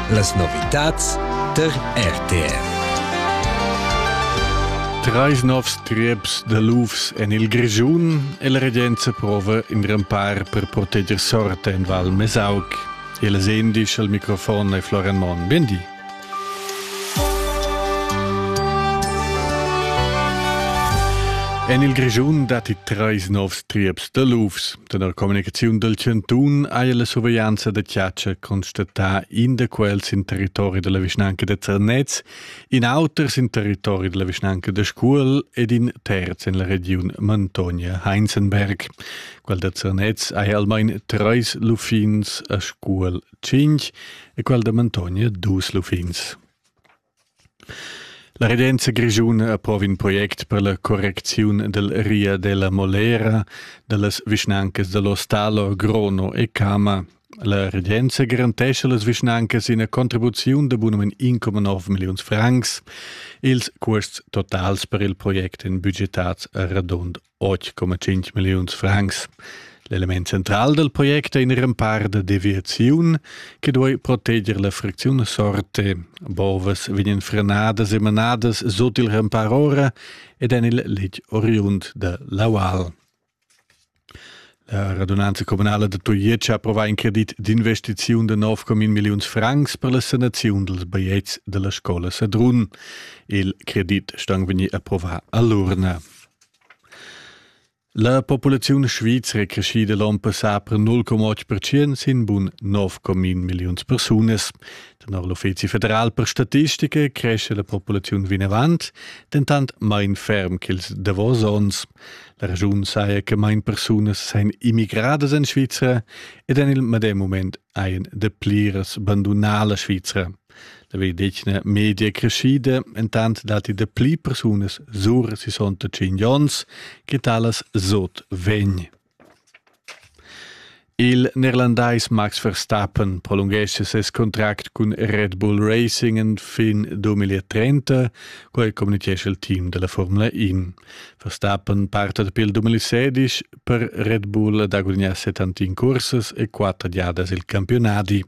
Las novitads tar RTR. Treis novs trieps da lufs en il Grischun e la regenza prova in rempar per proteger sorte en Val Mesauc. E las endisch al microfon è Florian Monn. Bendi. En il Grischun datti treis novs trieps da lufs. Tenor communicaziun dal chantun haja la surveglianza da chatscha constatà in da quels sin territori della vischnanca da Zernez, in auter sin territori della vischnanca da Scuol ed in terz en la regiun Mantonia-Heinzenberg. Quel da Zernez haja almain treis luffins a Scuol tschinch e quel da Mantonia dus luffins. La regenza grischuna approva in project per la correcziun del Ria della Molera dallas vischnancas dell'Ostalo, Grono e Cama. La regenza garantescha las vischnancas ina contribuziun de bunum 1,9 milliuns francs. Ils cuosts totals per il project èn budgetats a radund 8,5 milliuns francs. L'element central dal project è in rempar da deviaziun che duai proteger la fricziun sorte. Bovas vegnan frenadas e manadas sut il rempar ora ed en il letg oriund da l'aual. La radunanza comunala da Tujetsch ha approvà in credit d'investiziun de 9,1 milliuns francs per la sanaziun dels baiets della scola Sadrun. Il credit sta vegnì approvà a l'urna. La populaziun svizra è creschida l'onn passà per 0,8 percent sin bun 9,1 milliuns persunas. Tenor l'Uffizi federal per statistica cresce la populaziun vinavant, dentant main ferm ch'ils davos onns. La regiun saja che main persunas sajan immigradas en Svizra ed en il medem moment ein de pliras bandunar la Svizra. La vedetgna media creschida, entant datti de pli persunas sur 65 ons che talas sot vegn. Il neerlandais Max Verstappen prolunghesce ses contract cun Red Bull Racing fin 2030, quel communichesce il team della Formula 1. Verstappen parta pil 2016 per Red Bull da gudignar 71 cursas e quatter giadas il campiunadi.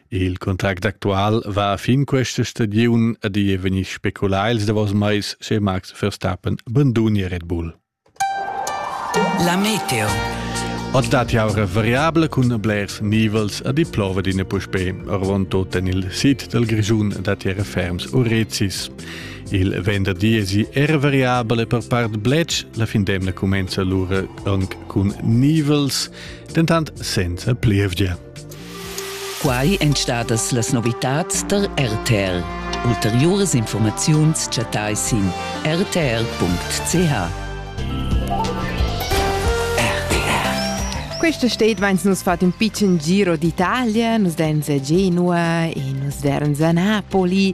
Il contract actual va fin questa stagiun ad è vegnir speculà ils davos mais se Max Verstappen bandunia Red Bull. La meteo. Oz dat jau variabla cun blers nivels a di plova d'ina puspè, arvon tot en il sit del Grigiun da terra ferms o rezis. Il venderdi esi er variabel e per part bletsch, la fin d'emna cumenza lura anc cun nivels, dentant senza plievgia. Quai èn stadas las novitads tar RTL. Ulteriuras informaziuns chattai sin rtl.ch. Questa state vains nus fat un piccin giro d'Italia, nus den già inua e nus veran a Napoli